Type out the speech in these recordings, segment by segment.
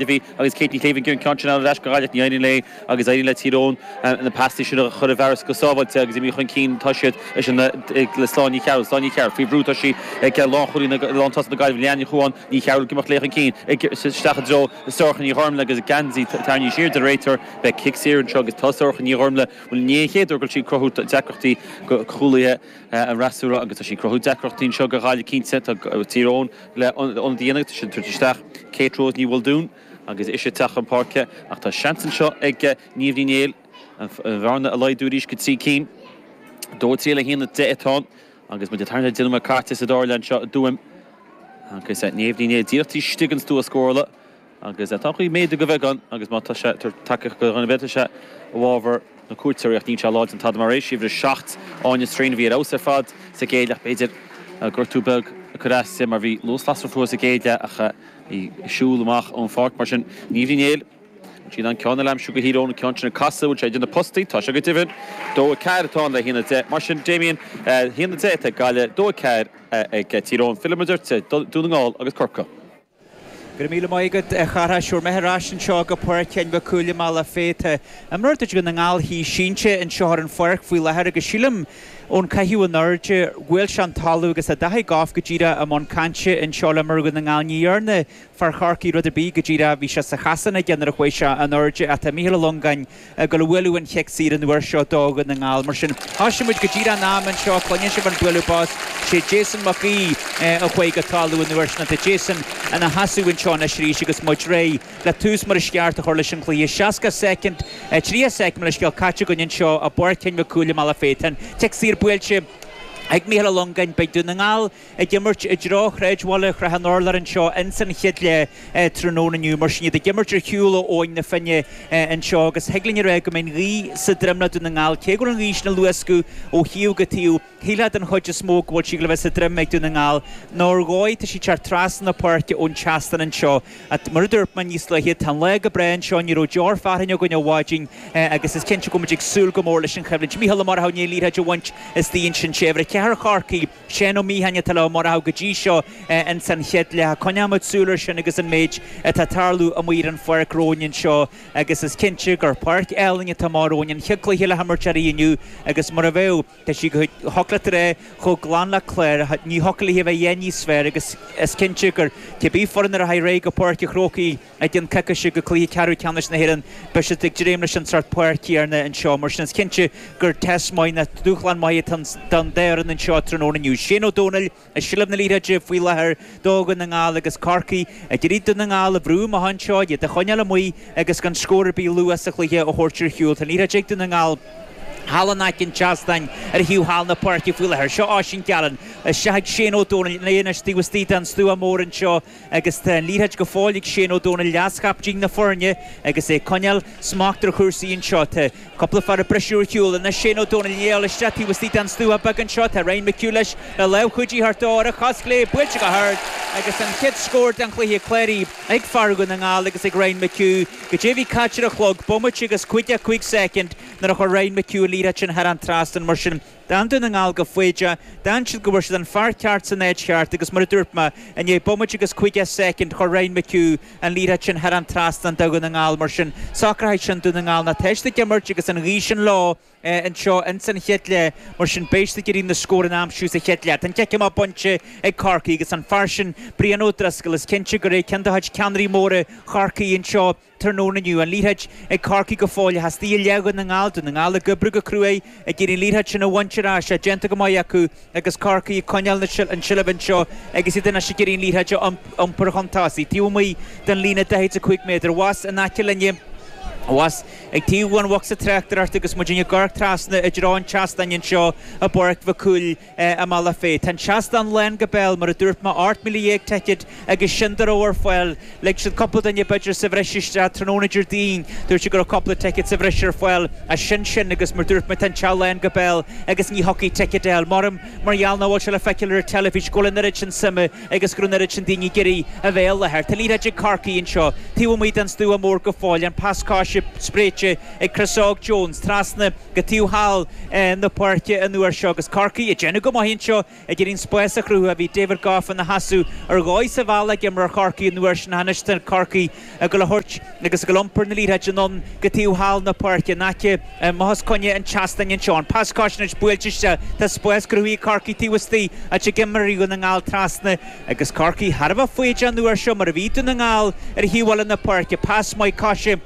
Duffy agus Kate Ní Chéibh an ceann sin ann ar ais go Gaillimh. Ní éiríonn léi agus éiríonn le Tír Eoghain na paistí sin a chur i bhfearas go sábháilte agus imithe chun cinn atá siad le Sláine Ní Chearúil. Sláine Ní Chearúil faoi bhrú, tá sí ag lántosaithe na Gaillimhe, Leanne Ní Chuáin, Ní Chearúil ag imeacht léi chun cinn, isteach i dtreo Sorcha Ní Ghoirmle agus a geansaí tarraingthe siar den réiteoir. Beidh cic saor anseo agus tá Sorcha Ní Ghoirmle, bhuel ní é an chéad uair go raibh sí ag cruthú deacrachtaí do chúlaithe an fhreasúra agus tá sí ag cruthú deacrachtaí anseo do Ghaillimh cinnte. Tá Tír Eoghain. le ionadaí ansin a thabhairt isteach, Katie Rose Ní Mhaoldúin, agus ise ag teacht chun páirce ach tá seans anseo ag Niamh Ní Néill an bhearna a laghdú arís go trí cinn. Dó a trí le haon a deich atá ann agus muid ag tarraingt ar an deich nóiméad caite sa dara leath anseo i dTuaim agus Niamh Ní Néill díreach taobh istigh den stua scórála. Agus tá cineál de ghaoth bheag ann, agus má tá sé ag tabhairt tacaíocht do dhuine beidh sé i bhfabhar na cuairteoirí, ach níl sé láidir ná tada mar é. Is uimhir a 7, Áine Strain a bhí ar fheabhas ar fad sa gcéad leath ach b'fhéidir gortú beag ag cur as di mar bhí luas lasrach fúithi sa gcéad leath ach í ag siúl amach ón pháirc mar sin. Niamh Ní Néill, bhfuil sí in ann ceann a aimsiú go híorónta ceann sin ag casadh, bhfuil sé idir na postaí, tá sé go deimhin. 2-4 atá ann le 1-10 mar sin Damien, 1-10 atá ag Gaillimh, 2-4 ag Tír Eoghain. Filleann muid ort, Dún na nGall agus Corcaigh. Go raibh míle maith agat, a chara. Seo muid ar ais anseo go Páirc Sheáin Mhic Cumhaill i mBealach Féich. Tá imreoir de chuid Dhún na nGall thíos sínte anseo ar an pháirc faoi láthair agus sílim, ón caitheamh in airde, gur bhuail sé an talamh agus tá Daithí Gough go díreach i mbun cainte anseo le himreoir Dhún na nGall. Ní dhearna fear Chorcaí rud ar bith go díreach. Bhí sé sa chasán aige nuair a chuaigh sé in airde ach tá Mícheál Ó Longáin, ag gabháil a bhualadh an cic saor an uair seo do Dhún na nGall. Mar sin, thosaigh muid go díreach an am anseo, a chluineann sibh an bualadh bos, sé Jason Mac Aoidh a chuaigh go talamh an uair sin. Tá Jason ina sheasamh anseo anois arís agus muid réidh le tús mar is ceart a chur leis an gcluiche. Seasca soicind, tríocha soicind, mo leithscéal, caite againn anseo i bPáirc Sheáin Mhic Cumhaill i mBealach Féich. Tá an cic saor buailte ag Mícheál Ó Longáin, beidh Dún na nGall ag imirt i dtreo shráidbhaile Shrath an Urláir anseo ins an chéad leath tráthnóna inniu. Mar sin, iad ag imirt ar shiúl ó Abhainn na Finne anseo agus thig linn a rá go mbeidh an ghaoth sa droim le Dún na nGall. Cé go bhfuil an ghaoth sin ag luascadh ó thaobh go taobh, shílfeá den chuid is mó go bhfuil sí le bheith sa droim ag Dún na nGall. Ar ndóigh, tá sí ag teacht trasna na páirce ón tseastán anseo. Mar a dúirt mé níos luaithe, tá an lá go breá anseo, ní raibh deoir fearthainne againn ó mhaidin agus is cinnte go bhfuil muid ag súil go mór leis an choimhlint. Mícheál Ó Murchadha, an liathróid a bhaint is d'aon sin sé uimhir a ceathair Chorcaí. Seán Ó Miacháin atá leo mar a thaibh go dtí seo in san chéad leath. Coinneoimid súil ar sin agus an méid atá ag tarlú amuigh ar an pháirc romhainn anseo agus is cinnte gur páirc álainn atá amach romhainn. An chéad chluiche le himirt uirthi inniu agus mar a bheadh, tá sí go shocraítear é chomh glan le clár, ní thiocfadh léithi a bheith aon níos fearr agus is cinnte gur cibé foireann a rachaidh ar aghaidh go Páirc an Chrócaigh, Ag dul ar aghaidh go Cluiche Ceathrú Ceannais na hÉireann, beidh siad ag dréim leis an sort páirc céanna anseo. Mar sin is cinnte gur test maith ná dúshlán maith atá ann daofa anseo tráthnóna inniu. Shane Ó Domhnaill i seilbh na liathróide faoi láthair do Dhún na nGall agus Corcaigh ag iarraidh Dún na nGall a bhrú amach anseo, iad a choinneáil amuigh agus gan scór ar bith luath sa chluiche a thabhairt ar shiúl. Tá an liathróid ag Dún na nGall. Thall in aice an tseastáin ar thaobh thall na páirce faoi láthair, seo Oisín Gallen. Isteach ag Shane Ó Domhnaill. Anois tá sé taobh istigh den stua mór anseo agus tá an liathróid go fóill ag Shane Ó Domhnaill, leaschaptaen na foirne, agus é ag coinneáil smacht ar chúrsaí anseo. Tá cúpla fear ag briseadh ar shiúl. Anois Shane Ó Domhnaill ag éalú isteach taobh istigh den stua beag anseo. Tá Ryan McHugh leis le lámh chuidithe a thabhairt dó ar a chos chlé. Buailte go hard agus an chéad scór den chluiche cláraithe, ag fear Dhún na nGall agus ag Ryan McHugh. Go deimhin caite ar an chlog bomaite agus 55 soicind nuair a chuir Ryan McHugh an liathróid sin thar an trasnán mar sin. D'fhan Dún na nGall go foighdeach, d'fhan siad go bhfuair siad an fear ceart san áit cheart agus mar a dúirt mé, i ndiaidh bomaite agus caoga soicind, chuir Ryan McHugh an liathróid sin thar an trasnán do Dhún na nGall. Mar sin, socróidh sin Dún na nGall tá siad ag imirt agus an ghaoth sin leo anseo ins an chéad leath, mar sin beidh siad ag iarraidh na scóranna a aimsiú sa chéad leath. Tá an cic amach bainte ag Corcaigh agus an fear sin Brian O'Driscoll, is cinnte gur é ceann de chuid ceannairí móra Chorcaí anseo Tráthnóna inniu, an liathróid ag Corcaigh go fóill thíos i leath Dhún na nGall, Dún na nGall ag oibriú go cruaidh ag iarraidh an liathróid sin a bhaint ar ais, tá déanta go maith acu agus Corcaigh ag coinneáil an tseilbh anseo agus iad anois ag iarraidh an liathróid a iompar chun tosaigh, taobh amuigh den líne 45 méadar. Abhus, in aice linn, abhus ag taobh an bhosca tráchtaireachta agus muid ag amharc trasna i dtreo an tseastáin anseo i bPáirc Mhic Cumhaill, i mBealach Féich. Tá an seastán lán go béal, mar a dúirt mé, 18,000 ticéad agus sin a raibh ar fáil. Lig siad cúpla duine b'fhéidir sa bhreis isteach tráthnóna Déardaoin, dúirt siad go raibh cúpla ticéad sa bhreis ar fáil ach sin sin agus mar dúirt mé tá an teach lán go béal agus ní thiocfadh ticéid a fháil. M'anam mar gheall nach bhfuil sé le feiceáil ar an teilifís go bhfuil an oiread sin suime agus go bhfuil an oiread sin daoine ag iarraidh a bheith i láthair. Tá an liathróid ag Corcaigh anseo, taobh amuigh den stua mór go fóill, an pas coise spréite ag Chris Óg Jones trasna go taobh thall na páirce an uair seo agus Corcaigh ag déanamh go maith anseo, ag iarraidh an spás a chruthú. Bhí David Gough ina sheasamh ar dhóigh sa bhealach ag imreoir Chorcaí an uair sin, tá anois Corcaigh ag dul a thabhairt agus ag dul a iompar na liathróide anonn go taobh thall na páirce in aice le máithreacha coirnéil an tseastáin anseo. An pas coise anois buailte isteach, tá spás cruthaithe ag Corcaigh taobh istigh ach d'imir Dún na nGall trasna agus Corcaigh thar a bheith foighdeach an uair seo mar a bhí Dún na nGall ar thaobh eile na páirce. Pas maith coise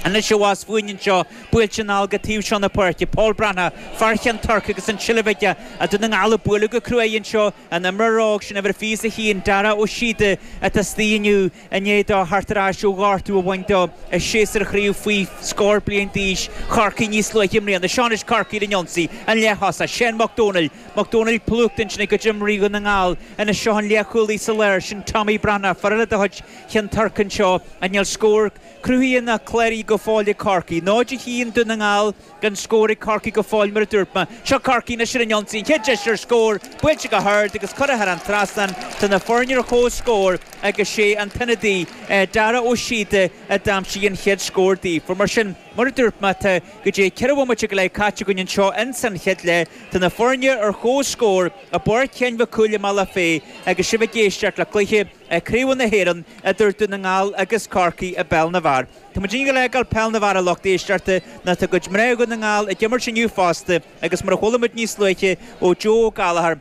anois abhus fúinn anseo, buailte anall go taobh seo na páirce. Paul Breathnach, fear Cheann Toirc agus an tseilbh aige, ach Dún na nGall ag bualadh go cruaidh anseo, an t-imreoir óg sin uimhir 21, Dara Ó Síoda, atá istigh inniu. I ndiaidh dó theacht ar ais ó ghortú a bhain dó i séasúr chraobh faoi scór bliain d'aois Chorcaí níos luaithe i mbliana, seo anois Corcaigh ar an ionsaí an leath-thosaí, Seán Mac Domhnaill, Mac Domhnaill plúchta ansin ag imreoirí Dhún na nGall ina seo an leathchúlaí sa lár sin Tommy Breathnach, fear eile de chuid Cheann Toirc anseo ach níl scór cruthaithe ná cláraithe go fóill ag Corcaigh, 0-1 Dún na nGall. gan scór ag Corcaigh go fóill mar a dúirt mé. Seo Corcaigh anois ar an ionsaí, an chéad deis ar scór buailte go hard agus curtha thar an trasnán. Tá na foirne ar comhscór agus sé an t-ionadaí, Dara Ó Síoda, a d'aimsigh an chéad scór daofa. Mar sin, mar a dúirt mé, tá, cad é, ceithre bhomaite go leith caite againn anseo in san chéad leath. Tá na foirne ar comhscór i bPáirc Sheáin Mhic Cumhaill i mBealach Féich agus sibh ag éisteacht le cluiche Craobh na hÉireann idir Dún na nGall agus Corcaigh i bpeil na bhfear. Tá muid inniu ag gabháil a fhágáil peil na bhfear a lucht éisteachta nó tá cuid mná Dhún na nGall ag imirt inniu fosta agus mar a chuala muid níos luaithe ó Joe Gallagher,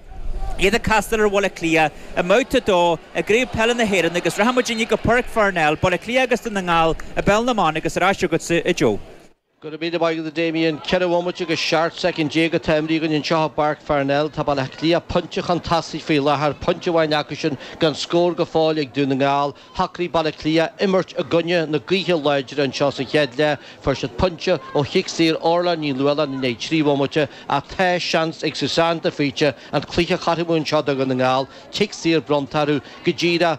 iad ag castáil ar Bhaile Átha Cliath i mBabhta 2 i gCraobh Peile na hÉireann agus rachaidh muid inniu go Páirc Pharnell, Baile Átha Cliath agus Dún na nGall i bpeil na mban agus ar ais chugatsa, a Joe. Gura míle maith agat a Damien. Ceithre bhomaite agus seacht soicind déag atá imeartha againn anseo i bPáirc Pharnell. Tá Baile Átha Cliath pointe chun tosaigh faoi láthair, pointe amháin acu sin gan scór go fóill ag Dún na nGall. Shocraigh Baile Átha Cliath imirt i gcoinne na gaoithe láidre anseo sa chéad leath. Fuair siad pointe ó chic saor Orla Ní Nualláin i ndiaidh trí bhomaite ach tá seans ag Susanne de Faoite an cluiche a chothromú anseo do Dhún na nGall, cic saor bronnta orthu go díreach.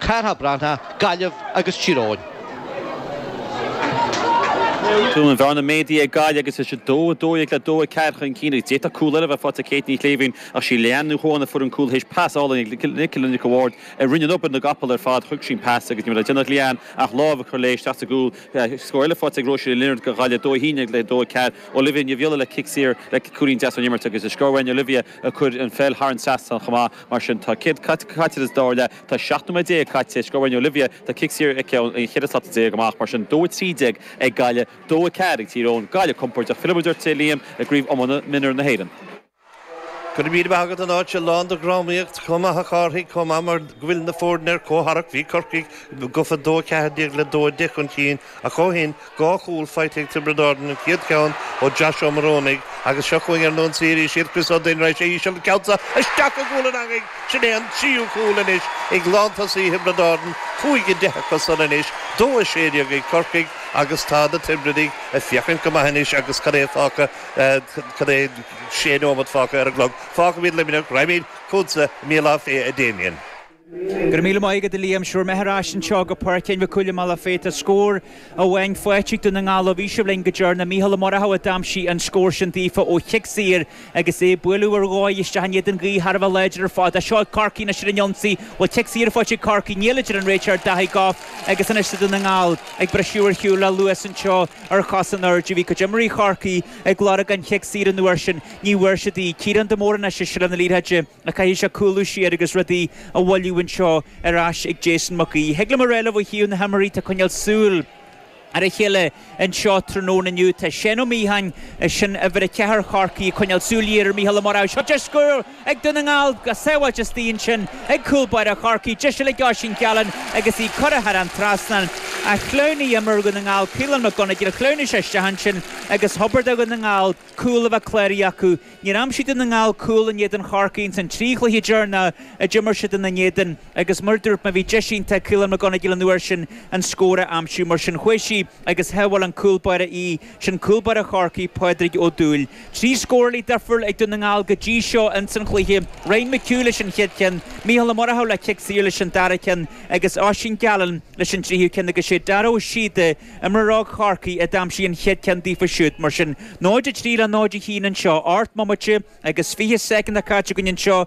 Cartha Breantha, Gaillimh agus Tír Eoghain. Tá an bhearna ag méadú ag Gaillimh agus iad 2, 12 le 2, 4 chun cinn agus d'fhéadfadh cúl eile a bheith faighte ag Kate Ní Shléibhín ach sí Leanne Ní Chuan a fuair an cúl théis pas álainn ag Nicola Nic an Bhaird a rinne an obair na gcapall ar fad thug sí an pas agus ní raibh le déanamh ag Leanne ach lámh a chur léi isteach sa gcúl scór eile faighte ag Róisín Ní Lionaird do Ghaillimh 2, 11, le 2, 4 Olivia Ní Dhuibhghiolla le cic saor le cúilín deas ón imirt agus is scór uainn Olivia a chuir an pheil thar an trasnán chomh maith mar sin tá céard caite sa dara leath Tá seacht nóiméad déag caite ag Sciobairín Olivia, tá cic saor aici ón 14 slat amach, mar sin dó a trí déag ag Gaillimh, dó a ceathair ag Tír Eoghain. Gaillimh compóirdeach fillfidh muid ort a Liam i gCraobh Iomána Mionúir na hÉireann. Go raibh míle maith agat, an áit seo lán de dhrámaíocht chomh maith, a Chárthaigh, chomh maith mar go bhfuil na foirne ar comhtharrac. Bhí Corcaigh gofa dó a ceathair déag le dó a deich chun cinn, Ach ó shin, dhá chúl faighte ag Tiobraid Árann, an chéad cheann ó Josh Ó Morónaigh agus seo chugainn ar an ionsaí arís iad Chris Ó Duinn, raid sé íseal an ceann seo isteach i gcúl an eangaigh. Sin é an tríú cúl anois ag lántosaí Thiobraid Árann, 5-10 acu san anois, 2 16 ag Corcaigh agus tá na Tiobradaigh ag féachaint go maith anois agus cad é fágtha, cad é, sé neomat fágtha ar an gclog. Fágfaimid Luimneach, raghaimid chugatsa i mBealach Féich, a Damien. Go raibh míle maith agat a Liam. 'Sé bhur mbeatha ar ais anseo go Páirc Sheáin Mhic Cumhaill i mBealach Féich. Tá scór amháin faighte ag Dún na nGall ó bhí sibh linn go deireanach. Micheál Ó Murchadha a d'aimsigh an scór sin daofa ó chic saor agus é ag bualadh ar dóigh isteach in éadan gaoth thar a bheith láidir ar fad. Seo ag Corcaigh anois ar an ionsaí. Bhfuil cic saor faighte ag Corcaigh, níl a deir an réiteoir Daithí Gough agus anois tá Dún na nGall ag briseadh ar shiúl le luas anseo ar chos in airde. Bhí cuid imreoirí Chorcaí ag lorg an chic saor an uair sin. Ní bhfuair siad í. Ciarán de Mórdha anois i seilbh na liathróide. Ach caithfidh sé cúlú siar agus rudaí a mhoilliú anseo ar ais ag Jason Mac Aoidh. Thig liom a rá libh ó thaobh na himreoirí atá ag coinneáil súil ar a chéile anseo tráthnóna inniu. Tá Seán Ó Míocháin, sin uimhir a ceathair Chorcaí, ag coinneáil súil ghéar ar Mhícheál Ó Murchadha. Seo deis cúil ag Dún na nGall. Go sábháilte istigh ansin ag cúl báire Chorcaí. Deis eile ag Oisín Gallen agus í curtha thar an trasnán. Ach shleamhnaigh imreoir Dhún na nGall, Caolán McGonigle, shleamhnaigh sé isteach ansin agus hóbair do Dhún na nGall. cúl a bheith cláraithe acu. Níor aimsigh Dún na nGall cúl in éadan Chorcaí ins an trí chluiche deireanach a d'imir siad ina n-éadan agus mar a dúirt mé bhí deis iontach ag Caolan McGonigle an uair sin an scór a aimsiú mar sin chuaigh sí agus shábháil an cúlbáire í sin cúlbáire Chorcaí, Pádraig Ó Dúill. Trí scóraí difriúil ag Dún na nGall go dtí seo ins an chluiche, Ryan McHugh leis an chéad cheann, Micheál Ó Murchadha le cic saor leis an dara ceann agus Oisín Gallen leis an tríú ceann agus sé Dara Ó Síoda Imreoir óg Chorcaí a d'aimsigh an chéad cheann daofa siúd, mar sin. 0-3 le 0-1 anseo. 8 mbomaite agus 20 soicind caite againn anseo